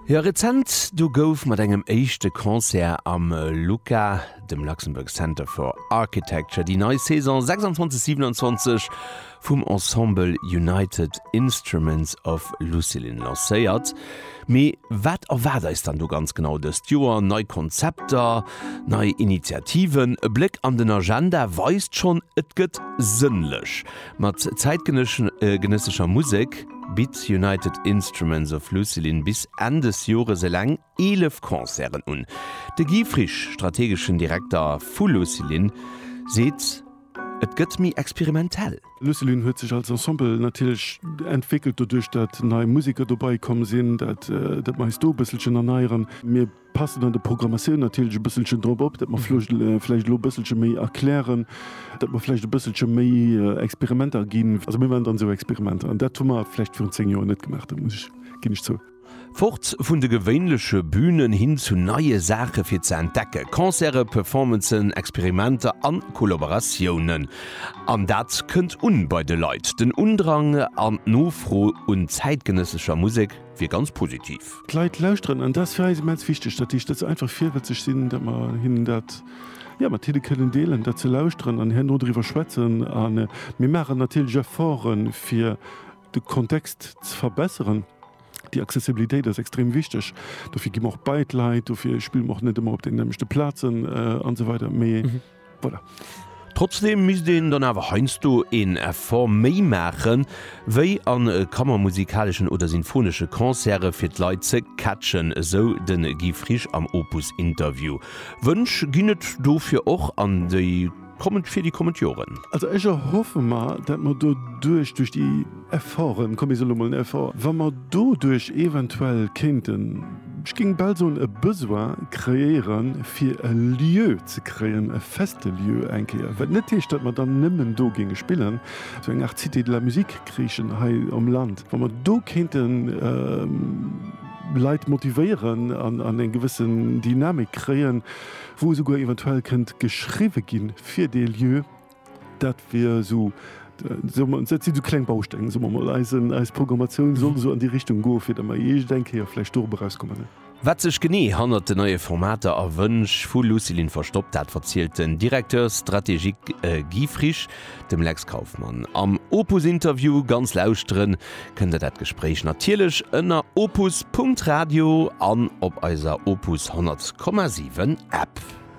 Jo, rezent do gouf mat engem éischte Concert am LUCA, dem Luxembourg Center for Architecture, déi nei Saison 26, 27 vum Ensemble United Instruments of Lucilin lancéiert. Mee wat erwaart eis dann do ganz genau dëst Joer? Nei Konzepter? Nei Initiativen? E Bléck an den Agenda weist schonn, et gëtt sënnlech mat zäitgenëssescher Musek. bitt United Instruments of Lucilin bis Enn des Jores eleng 11 Concerten un. De Guy Frisch, strategeschen Direkter vu Lucilin, seet, et gëtt méi experimentell. Lucilin huet sech als Ensemble natierlech entwéckelt, doduerch datt nei Museker dobei komm sinn, datt mer eis do e bësselchen erneieren. Mir passen an der Programmatioun natierlech e bësselchen drop op, datt mer vläicht elo e bësselche méi erklären, datt mer vläicht e bësselche méi Experimenter ginn. Also mir maachen dann esou Experimenter an dat hu mer vläicht virun zéng Joer net gemaach, dat muss ech, ginn ech zou. Fort vun de gewéinleche Bünen hin zu neie Saache fir ze entdecken, Concerte, Performancen, Experimenter an Kollaboratiounen. An dat kënnt un bei de Leit, den Undrang an d'Nofro un zäitgenëssescher Musek. wier ganz positiv. D'Leit lauschteren an dat ass fir eis immens wichteg, datt déi Stëtz einfach virwëtzeg sinn, datt mer hinnen dat, jo, mat hinne kënnen deelen, datt se lauschteren an herno driwwer schwätzen. A mir maachen natierlech Efforte fir de Kontext ze verbesseren. Déi Accessibilitéit ass extrem wichteg, dofir gi mer och bei d'Leit, dofir spille mer och net ëmmer op deenen nämlechte Plazen an esou weider, mee. Voilà. Trotzdeem misst een dann awer heiansdo een Effort méi maachen, wéi a kammermusikaleschen oder sinfonesche Concerte fir d'Leit ze catchen, esou de Guy Frisch am Opus Interview. Wënsch ginn et dofir och an déi kommend fir déi kommend Joren. Also ech erhoffe mer, dat mer doduerch, duerch déi. Efforten, komm mir soen elo mol en Effort, wa mer doduerch eventuell kéinten, ech géing bal soen, e Besoin kreéieren, fir e Lieu ze kréien, e feste Lieu eng Kéier. Wat net heescht, datt mer dann nëmmen do géinge spillen, sou eng Art Cité de la musique kriichen hei am Land, wa mer do kéinte Leit motivéieren an eng gewësse Dynamik kréien, wou esouguer eventuell kënnt geschriwwe gi fir dee Lieu. Dat wier esou, dat sinn esou kleng Bausteng, soe mer emol. Eisen, eis Programmatioun soll esou an déi Richtung goen, fir datt mer iergend eng Kéier vläicht dorueber erauskommen. Mme. Wat sech genee hannert den neie Formater a Wënsch vu Lucilin verstoppt, dat verzielt den Directeur stratégique Guy Frisch dem Lex Kauffmann am Opus-Interview. Ganz lauschtere kënnt der dat Gespréich natierlech ënner opus Punkt Radio an op eiser Opus 100,7 App.